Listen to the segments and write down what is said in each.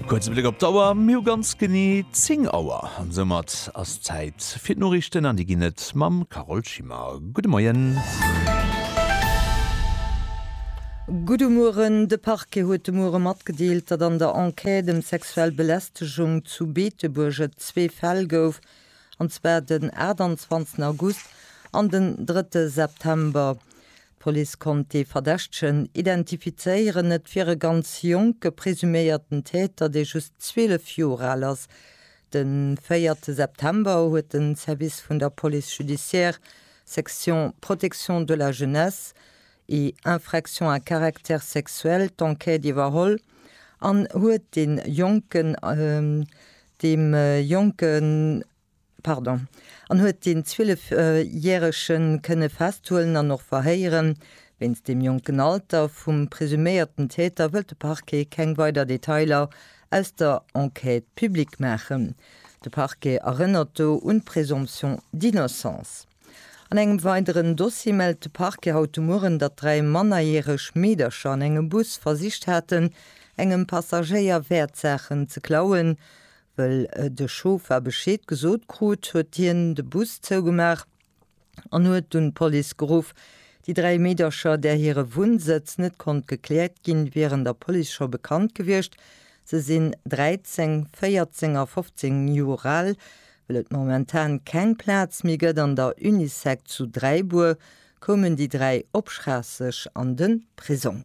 Kuerze Bléck op d'Auer, mir hu ganz genee 10 Auer an soumat ass Zäit fir d'Noriichten an déi ginn et mam Carole Schimmer. Gudde Moien. Gudde Mueren, De Parquet huet de Muere matgedeelt, datt an der Enquête ëm sexuell Belästegung zu Beetebuerg et zwee Fäll gouf, an zwar den 28 August an den 3 September. D'Police konnt dee Verdächtegen identifizéieren. Et wier e ganz jonke presuméierten Täter, dee just 12 Joer al ass. De véierte September huet de Service vun der Police judiciaire, Section Protection de la Jeunesse et infractions à caractère sexuel, d'Enquête iwwerholl an huet dee Jonken, deem jonken, Pardon, an huet deen 12 järegen kënne festhuelen an och verhéieren. Wéinst dem jonken Alter vum presuméierten Täter wëllt de Parquet keng weider Detailer aus der Enquête public maachen. De Parquet erënnert do un d'Présomption d'innocence. An engem weideren Dossier mellt de Parquet haut de Mueren, datt dräi mannerjäreg Meedercher an engem Bus versicht haten, engem Passagéier Wäertsaachen ze klauen. Wëll de Chauffer Bescheed gesot krut, huet hien de Bus zougemaach an huet dunn d'Police geruff. Déi dräi Meedercher, där hire Wunnsëtz net konnt gekläert ginn, wieren der Police scho bekannt gewiescht. Se sinn 13, 14 a 15 Joer al. Wëll et momentan keng Plaz méi gëtt an der Unisec zu Dräibuer, koumen déi dräi op Schraasseg an de Prisong.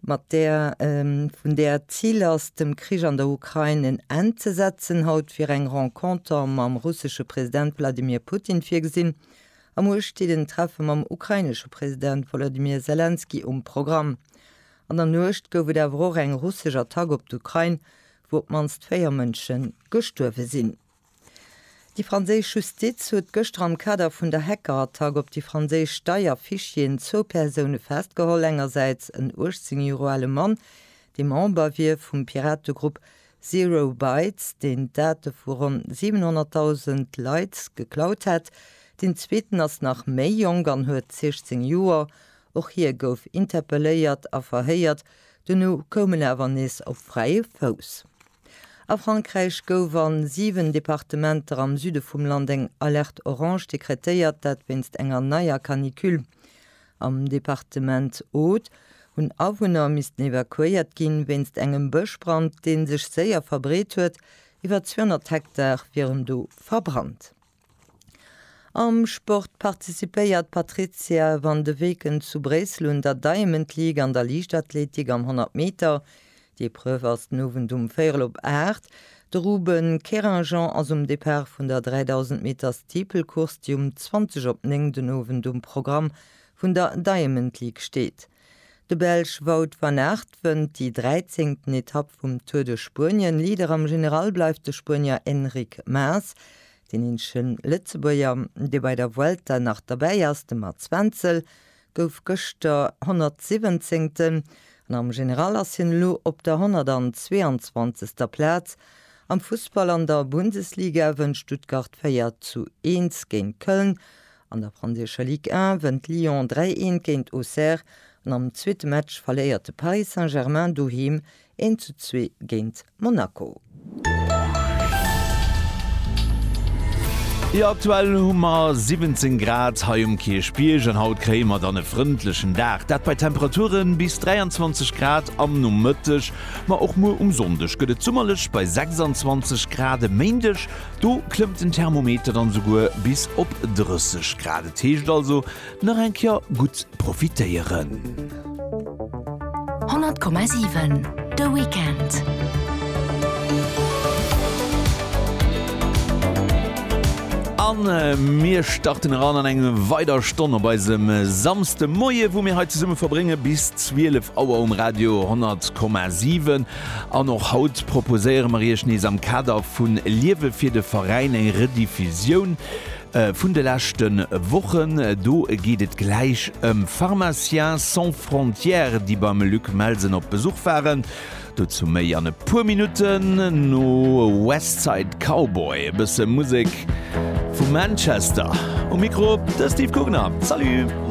Mat där vun där et d'Zil ass, dem Krich an der Ukrain en Enn ze setzen, haut wier eng Renconter mam russesche President Wladimir Putin virgesinn. A muer steet en Treffe mam ukrainesche President Wolodymyr Selenskyj um Programm. An der Nuecht gouf et awer och eng russesch Attack op d'Ukrain, wou op d'mannst véier Mënsche gestuerwe sinn. Déi franséisch Justiz huet gëschter am Kader vun der Hackerattack op déi franséisch Steierfichieren zwou Persoune festgeholl, engersäits en 18 Jore ale Mann, dee Member wier vum Pirategrupp Zero Bytes, deen d'Date vu ronn 700.000 Leit geklaut hätt, deen zweeten ass nach méi jonk an huet 16 Joer. Och hie gouf interpelléiert a verhéiert, dono koum en awer nees op fräie Fouss. A Frankräich gouf an 7 Departementer am Süde vum Land eng Alerte Orange dekretéiert, dat wéinst enger neier Canicule. Am Departement Aude hunn Awunner missten evakuéiert ginn, wéinst engem Bëschbrand, dee sech séier verbreet huet. Iwwer 200 Hektar wieren do verbrannt. Am Sport participéiert d'Patrizia van de Weken zu Bréissel un der Diamond League an der Liichtathletik am 100 Meter. D'Epreuve ass den Owend um véierel op 8. De Ruben Querinjean ass um Depart vun der 3000 Meter Steeple-Course, déi um 20 op 9 den Owend um Programm vun der Diamond League steet. De Belsch Wout van Aert wënnt déi dräizéngten Etapp vum Tour de Spuenien. Leader am General bleift de Spuenier Enric Mas. Deen eenzege Lëtzebuerger, dee bei der Vuelta nach derbäi ass, de Mats Wenzel, gouf gëschter Honnertsiwwenzéngten an am General ass hien elo op der Honnertanzweeanzwanzegster Plaz. Am Fussball, an der Bundesliga wënnt Stuttgart 4 zu 1 géint Köln An der franséischer Ligue 1 wënnt Lyon 3 eent géint Auxerre an am zweete Match verléiert de Paris Saint-Germain doheem 1 zu 2 géint Monaco. Jo aktuell hu mer 17 Grad hei um Kierchbierg an haut kréie mer dann e frëndlechen Dag, dat bei Temperature bis 23 Grad am Nomëtteg. Ma och muer um Sonndeg gëtt et summerlech bei 26 Grad. E Méindeg Do klëmmt den Thermometer dann esouguer bis op 30 Grad. Et heescht also nach eng Kéier gutt profitéieren. 100,7 De Weekend. An mir starten eran an eng weider Stonn op eisem Samste Moie, wou mir hei zesumme verbrénge bis 12 Auer um Radio 10,7. An och haut proposéiere mer Iech nees am Kader vu Liewe fir de Veräin eng Rediffusioun vun de leschte Wochen. Do geet et gläich ëm Pharmaciens sans frontières, déi beim Luc Melsen op Besuch waren. Dozou méi an e puer Minutten no West Side Cowboy. E bësse Musek vu Manchester. Um Mikro de Steve Gugner. Salut!